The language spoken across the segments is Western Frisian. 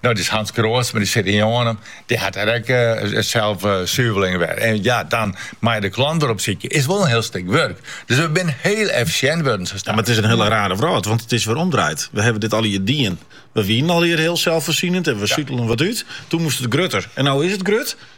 No, dêr is Hans Kroodsma, dy sit yn Jannum. Dy hat der ek eh, self eh, suveljen wer. En ja, dan meie je de klant weer opsykje. Is wol in hiel stik wurk. Dus we binne hiel effisjint wurden. Ja, mar it is in hiele rare wrâld, want it is wer omdraaid. We hawwe dit alear dien. We wienen alear hiel zelfvoorzienend en we sutelen wat út. Toen moast it grutter. En no is it grut.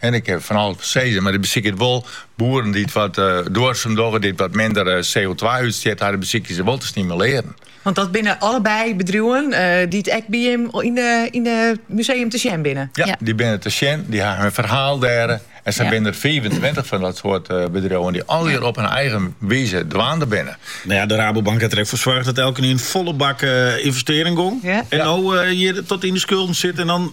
En ik kin fan alles sizze, mar se besykje it wol. Boeren dy't wat duorsum dogge, dy't wat minder CO-twa-útstjit ha, dy besykje se wol te stimulearjen. Want dat binne allebei bedriuwen dy't ek by jim yn de museum te sjen binne? Ja, dy binne te sjen, dy ha hun ferhaal dêr. En sa binne der fiifentweintich fan dat soart bedriuwen dy't allegear op hun eigen wize dwaande binne. No ja, de Rabobank hat der ek foar soarge dat elkenien folle bak ynvestearje gong. En no hjir tot yn de skulden sit en dan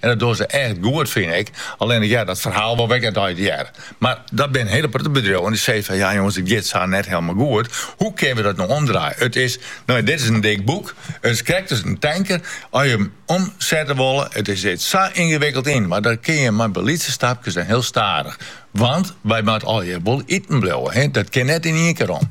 En dat dogge se echt goed, fyn ik. Allinnich heart dat ferhaal wol wekker nei it hear. Mar dat binne hiele protte bedriuwen dy't sizze fan, ja jonges, it giet sa net hielendal goed. Hoe kinne we dat no omdraaie? It is, no ja, dit is in dik boek. It is krekt as in tanker. As je him omsette wolle, it sit sa yngewikkeld yn mekoar, dat kinne je mar by lytse stapkes en hiel stadich. Want wy moatte allegear wol iten bliuwe, dat kin net yn ien kear om.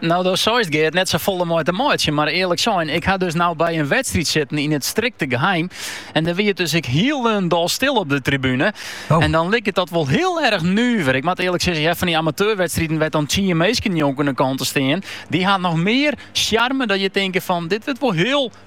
No, do seist Geart net sa folle mei te meitsjen, mar earlik sein, ik ha dus no by in wedstryd sitten yn it strikte geheim en der wie it dus ek hielendal stil op de tribune. Oh. En dan liket dat wol hiel erg nuver. Ik moat earlik sizze, ja, fan dy amateurwedstriden wêr't dan tsien minsken njonken de kant stean, dy ha noch mear sjarme dat je tinke fan dit wurdt wol hiel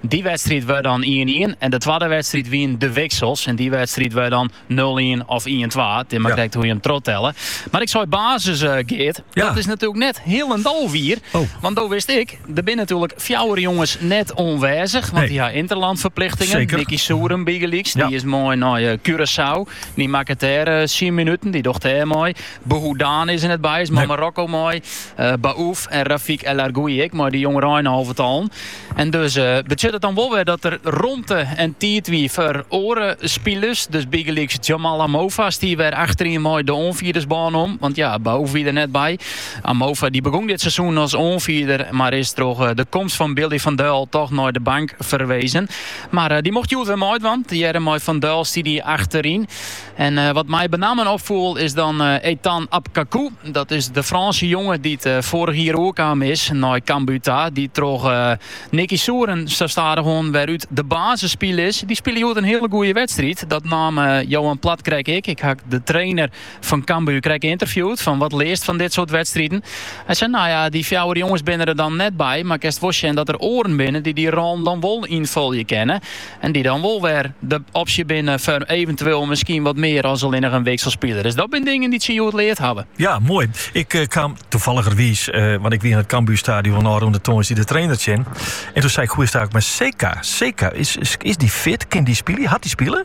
Dy wedstriid wurdt dan ien-ien en de twadde wedstriid wienen de wiksels en dy wedstriid wurdt dan nul-ien of ien-twa. It is mar Ja. krekt hoe je him trochtelle. Mar ik sei basis, eh, Geart, Ja. dat is natuerlik net hielendal wier. Oh. Want do witst ek, der binne natuerlik fjouwer jonges net oanwêzich, want Nee. dy ha interlandferplichtingen. Zeker. Nicky Souren bygelyks, Ja. dy is mei nei eh, Curaçao. Dy makket dêr eh, syn minuten, dy docht dêr mei. Bouhoudane is der net by, is mei Nee. Marokko mei. Eh Baouf en Rafik El Arguioui ek, mei de jongereinalvetallen. En dus betsjut it dan wol wer dat der romte en tiid wie foar oare spilers. Dus bygelyks Jamal Amofa stie wer achteryn mei de oanfierdersbân om. Want ja, Baouf wie der net by. Amofa dy begûn dit seizoen as oanfierder, mar is troch de komst fan Billy van Duijl toch nei de bank ferwezen. Mar dy mocht hjoed wer meidwaan. Tegearre mei Van Duijl stie dy achteryn. En wat my benammen opfoel is dan Ethan Apkakou. Dat is de Frânske jonge dy't foarich jier oerkaam is nei Cambuur ta. Dy't troch Nicky Souren sa stadich oan wer út de basis spile is. Dy spile hjoed in hiele goede wedstriid. Dat neamde Johan Plat krekt ek. Ik ha de trainer fan Cambuur krekt ynterviewd fan wat learst fan dit soart wedstriden. Hy sei nou ja, dy fjouwer jonges binne der dan net by, mar kinst wol sjen dat der oaren binne dy't dy rollen dan wol ynfolje kinne. En dy't dan wol wer de opsje binne foar eventueel miskien wat mear as allinnich in wikselspiler. Dus dat binne dingen dy't se hjoed leard hawwe. Ja, moai. Ik eh, kaam toevalligerwiis, eh, want ik wie in het Cambuurstadion ôfrûne tongersdei de trainer tsjin. En doe sei ik, hoe is it mei Seka? Seka, is, is, is die fit? Kin die spylje? Hat die spile?